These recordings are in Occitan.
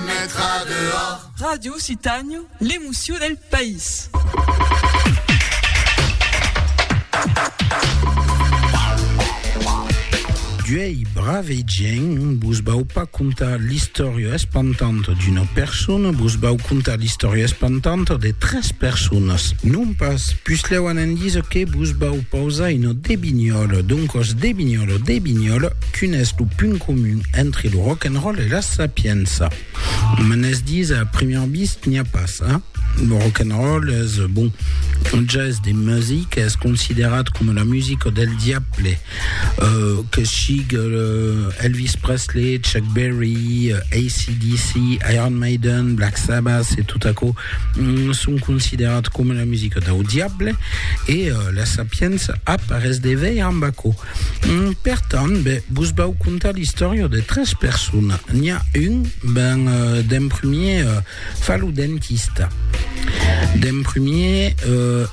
Metra dehors. Radio Citània, l'emocion del país. D'uei brave gent, vos vau pas contar l'istòria espantanta d'una persona, vos vau contar l'istòria espantanta de tres personas. Non pas, puslèu anant disa que vos vau pausar una debinhòla, doncòs debinhòla, debinhòla, Quin es lo punt comun entre lo rock and roll e la sapiença? Me n'es dits a primièr bist n'i a pas, a? Lo rock and roll es, bon, un ges de music, es considerat coma la musica del diable, que sigue Elvis Presley, Chuck Berry, AC/DC, Iron Maiden, Black Sabbath e tot aquò son considerats coma la musica dau diable e la sapiença ap arrés de veir amb aquò. Per tant, be, vos vau contar l'istòria de tres persona. N'i a un, ben, d'en premier, fa lo dentista. D'en premier,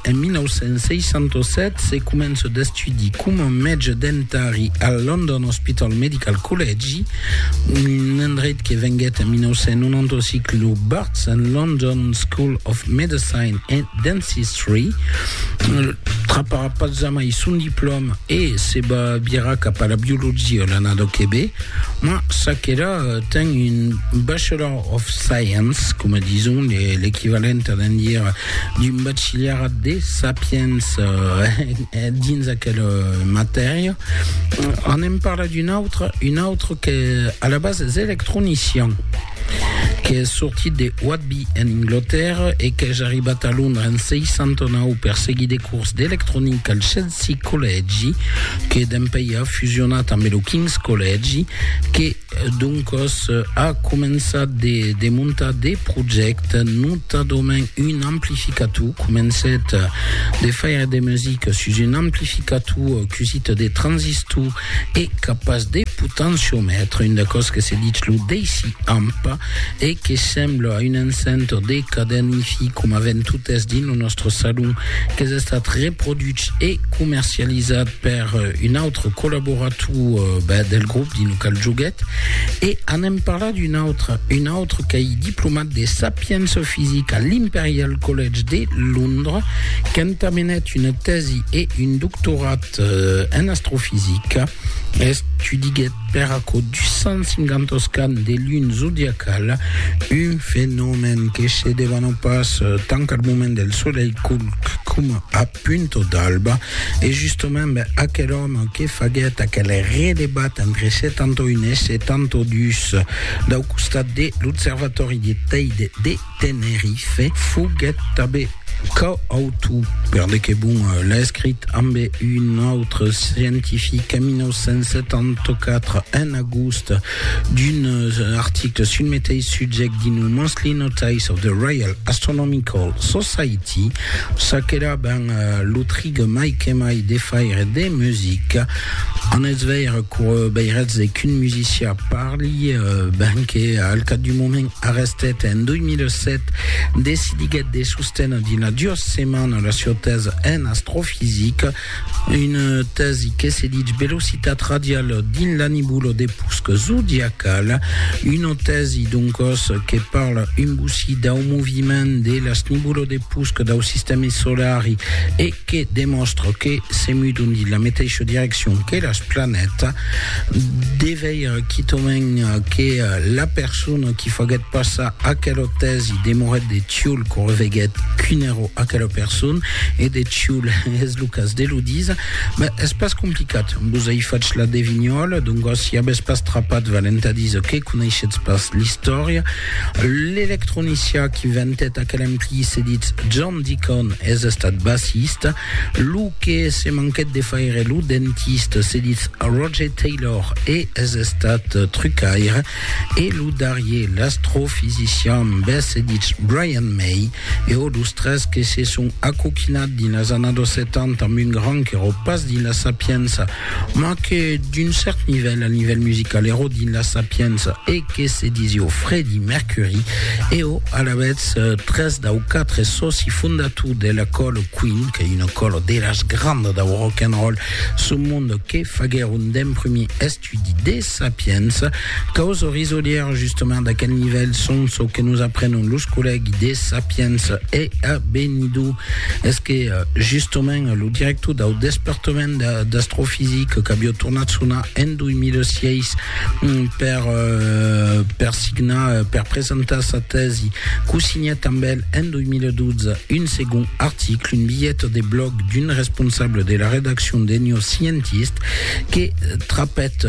en 1967, se comença d'estudi coma mètge dentari al London Hospital Medical Collegi, un endreit que venguèt en 1995 lo Barts and London School of Medicine and Dentistry, Patzamai son diplòma e se va virar cap a la biologia l'annada que ve, ma ça qu'èra ten un Bachelor of Science, coma dison, l'equivalent a d'en dire d'un bachilharat de sapiença dins aquela matèria. Anem parlar d'un autre, un autre que a la base es electronician. qu'es sortit de Whitby en Englotèrra e qu'es arribat a Londra en 69 per seguir de cors d'electronica al Chelsea Collègi que dempèi a fusionat ambe lo King's Collègi que doncos a començat de de montar de projècte notadament un amplificator comencèt de faire de musica sus un amplificator cusit de transistor e capas de potenciomètre, un d'aquò's que se ditz lo DC-amp e que sembla a un encenter de cadèn Hi-Fi coma avèn totes dins lo nòstre salon, qu'es estat reproduch e comercializat per un autre collaborator del grop dins lo qual joguèt e anem parlar d'un autre, un autre qu'ei diplomat de sapiença fisica a l'Imperial College de Londres, qu'entamenèt una tèsi e un doctorat En astrofisica, estudiguèt per aquò 250 oscans de luna zodiacala, un fenomèn que se devana pas tant al moment del solelh coma a punta d'alba, e justament aquel òme que faguèt aquel redebat entre 71 e 72 dau costat de l'observatòri de Teide de Tenerife foguèt tanben coautor, per de que bon l'escrit, ambe un autre scientific en 1974, en agost, d'un article sul meteis subject dins lo Monthly Notice of the Royal Astronomical Society, ça qu'èra ben lo trig mai que mai de faire de musica. En eth veire cour veiretz qu'un musician parli, ben que al cap d'un moment, Arrestet en 2007, decidiguèt de sostener dina duas setmanas la sieu tèsa en astrofisica, una tèsi que se ditz velocitat radiala dins la nibula de pusc zodiacala, una tèsi doncòs que parla un bocí dau moviment de las nibulas de pusc dau sistèmi solari e que demòstra que se mudon dins la meteisha direccion que las planètas, de veire quitament que la persona qui faguèt passar aquela tèsi demorèt de Tioul quand reveguèt quin èra aquela persona, e de Tioul es lo cas de lo díser, ben es pas complicat, vos ai fach la devinhòla, doncas si avètz pas trapat valent a díser que coneishetz pas l'istòria, l'electronicien qui ventèt aquel empri se ditz John. Dicon es estat bassista, lo que se manquèt de faire lo dentista, se ditz Roger Taylor e es estat trucaire, e lo darrier l'astrofisician bes se ditz Brian May, e ò los tres que se son acoquinat dins las annados 70 amb un gran qu'eró pas dins la sapiença, Ma que d'un cèrt nivèl, al nivèl musical, ero dins la Sapienza e que se disió Fredi Mercuri, eo alavetz tres dau quatre sòci fondator de la Còlo Queen, qu'ei una còlo de las grandas dau rock and roll sul monde que faguèron d'emprumir estudi de Sapienza, Causes risolièras justement d'aquel nivèl son çò que nos aprenon los collègues de Sapiens e a Benidó es que justement lo director dau despertament d'astrofisica qu'avió tornat sonar en 2006 per, per signar, per presentar sa tèsi, cosignèt amb el en 2012 un segond article, un bilhet de blòg d'un responsable de la redaccion de New Scientist que trapèt,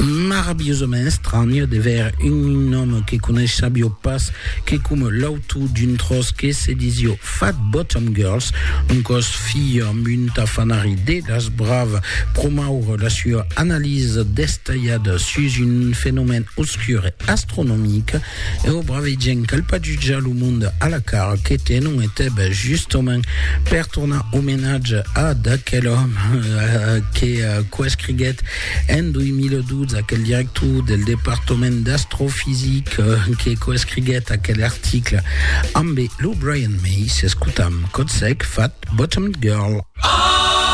Maravilhosament estranh de veire un òme que coneissavió pas, que coma l'autor d'un tròç que se disió Fat Bottom Girls, un còs filh amb un tafanari de las bravas, promoure la sua analisa destalhada sus un fenomèn obscur e astronomic, e o brave gent cal pas jutjar lo monde a la cara que tenon e teb justament per tornar omenatge a d'aquel òme que coescriguèt En 2012, aquel director del departament d'astrofisica que coescriguèt aquel article ambe lo Brian May, s'escotam Kotsek fat Bottomed Girl.